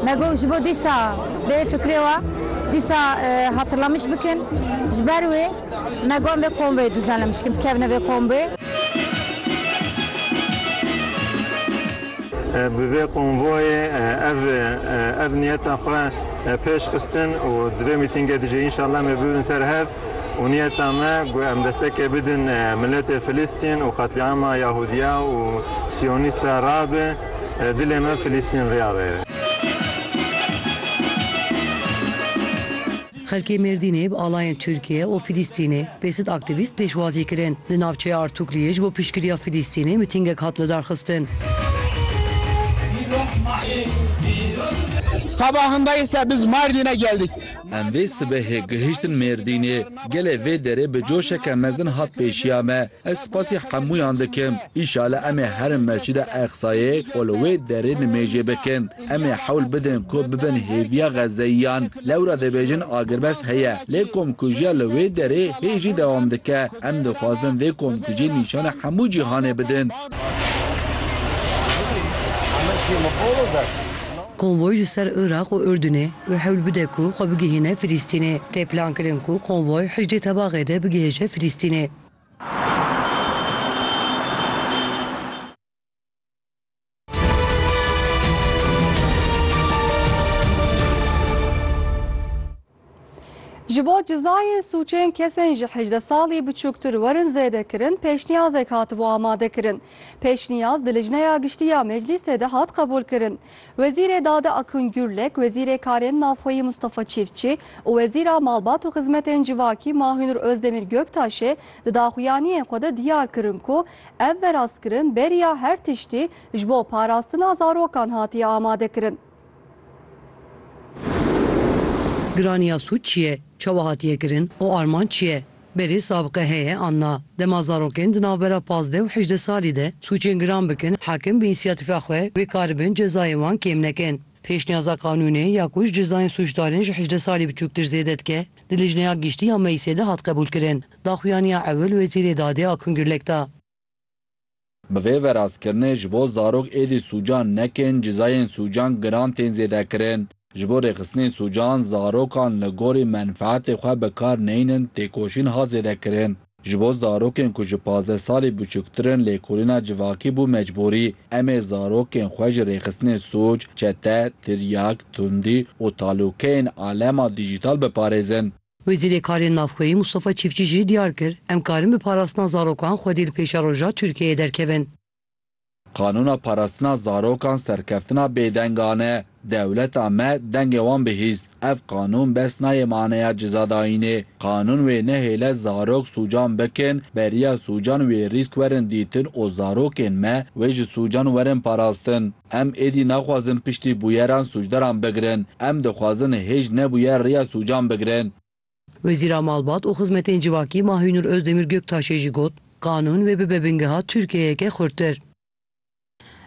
Me got ji bo dîsa bê fikrê we dîsa hatırlamış bikin. Ji ber wê me got em vê kombê duzanlemiş bikin, bikevine vê kombê. Bi vê komboyê ev ev niyeta xwe pêş xistin û di vê mîtîngê de jî înşallah em ê bibin ser hev û niyeta me ku em destekê bidin miletê Filistîn û qetlîama Yahudiya û Siyonîsta rabe. Dilê me Filîstîn riya be. Xelkê Mêrdînê bi alayên Tirkiye û Filîstînê bê sid aktîvîst pêşwazî kirin. Li navçeya Artukliyê ji bo piştgiriya Filîstînê mitîngek hat lidarxistin. Sabahında ise biz Mardin'e geldik. Em vê sibehê gihiştin Mêrdînê. Gelê vê derê bi coşeke mezin hat pêşiya me. Ez spasî hemûyan dikim. Îşale em ê herin Mescida Eqsayê û li wê derê nimêjê bikin. Em ê hewl bidin ku bibin hêviya Xezeyiyan. Lewra dibêjin agirbest heye, lê komkujiya li wê derê hê jî dewam dike. Em dixwazin vê komkujiyê nîşana hemû cîhanê bidin. Konvoy ji ser Iraq û Urdunê wê hewl bide ku xwe bigihîne Filîstînê. Tê plankirin ku konvoy hejdê tebaxê de bigihêje Filîstînê. Ji bo cizayên sûcên kesên ji hejde salî biçûktir werin zêdekirin pêşniyazek hatibû amadekirin. Pêşniyaz di Lijneya Giştî ya Meclîsê de hat qebûlkirin. Wezîrê Dade Akun Gurlek, Wezîrê Karên Navxweyî Mustafa Çîftçî û Wezîra Malbat û Xizmetên Civakî Mahinur Ozdemir Göktaşê di daxuyaniyên xwe de diyar kirin ku ev verastkirin beriya her tiştî ji bo parastina zarokan hatiye amadekirin. Giraniya sûd çi ye, çawa hatiye kirin û armanc çi ye? Berê sabqe heye an na. Dema zarokên di navbera pazdeh û hejdeh salî de sûcên giran bikin, hakim bi înîsiyatîfa xwe wê karibin cezayên wan kêm nekin. Pêşniyaza qanûnê ya ku ji cezayên sûcdarên ji hejdeh salî biçûktir zêde dike, di Lijneya Giştî ya Meclîsê de hat qebûlkirin. Daxuyaniya ewil Wezîrê Dadê Akun Gurlek da. Bi vê verazkirinê ji bo zarok êdî sûcan nekin cizayên sûcan giran tên zêdekirin. Ji bo rêxistinên sûcan zarokan li gorî menfeetê xwe bi kar neynin têkoşîn hat zêdekirin. Ji bo zarokên ku ji pazdeh salî biçûktir in lêkolîna civakî bû mecbûrî. Em ê zarokên xwe ji rêxistinê sûc, çete, tiryak, tundî û talûkeyên alema dîjîtal biparêzin. Wezîrê Karên Navxweyî Mustafa Çîfçî jî diyar kir, Em karin bi parastina zarokan xwedî li pêşa roja Tirkiyeyê derkevin. Qanûna parastina zarokan serkeftina bêdengan e. Dewleta me dengê wan bihîst. Ev qanûn bes nayê maneya cizadayînê. Qanûn wê nehêle zarok sûcan bikin, beriya sûcan wê rîsk werin dîtin û zarokên me wê ji sûcan werin parastin. Em êdî naxwazin piştî bûyeran sûcdaran bigirin. Em dixwazin hêj nebûyer rêya sûcan bigirin. Wezîra Malbat û Xizmetên Civakî Mahînur Ozdemîr Göktaşê jî got, Qanûn wê bibe bingeha Tirkiyeyeke xurttir.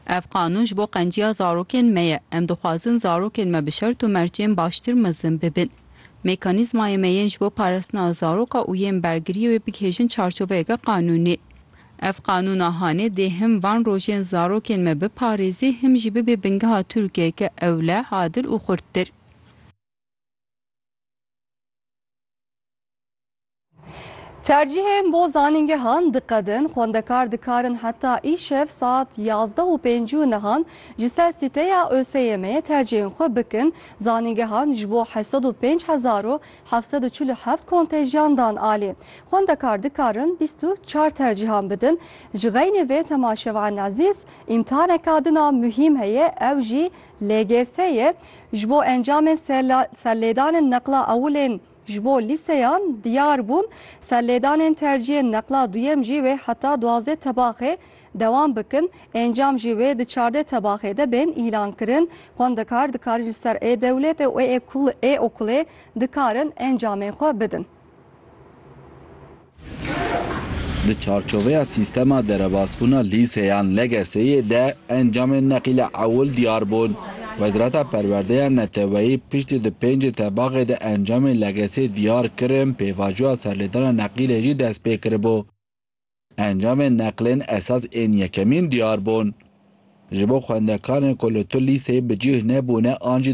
Ev qanûn ji bo qenciya zarokên me ye. Em dixwazin zarokên me bi şert û mercên baştir mezin bibin. Mekanîzmayê me yên ji bo parastina zaroka û yên bergiriyê wê bigihêjin çarçoveyeke qanûnî. Ev qanûna hanê dê him van rojên zarokên me biparêzê him jî bibe bingeha Tirkiyeke ewle, adil û xurttir. Tercîhên bo zanîngehan diqedin, xwendekar dikarin heta îşev saet yazdeh û pêncî û nihan ji ser sîteya ÖSYM'ê tercîhên xwe bikin, zanîngehan ji bo heft sed û pênc hezar û heft sed û çil û heft kontejiyan dan alî. Xwendekar dikarin bîst û çar tercîhan bidin. Ji xeynê vê Tema Şev'an Ezîz îmtihaneka din a muhîm heye ew jî LGS ye. Ji bo encamên serlêdanên neqla ewilên ji bo lîseyan diyar bûn. Serlêdanên tercîyên neqla duyem jî wê heta duwazdeh tebaxê dewam bikin, encam jî wê di çardeh tebaxê de bên îlankirin, xwendekar dikarin ji ser ê dewletê û ê okulê dikarin encamên xwe bidin. Di çarçoveya sîstema derebasbûna lîseyan, LGS'yê, de encamên neqîle ewil diyar bûn. Wezareta Perwerdeya Neteweyî piştî di pêncê tebaxê de encamên LGS'yê diyar kirin, pêvajoya serlêdana neqîlê jî destpê kiribû. Encamên neqlên esas ên yekemîn diyar bûn. Ji bo xwendekarên ku li tu lîseyê bi cih nebûne an jî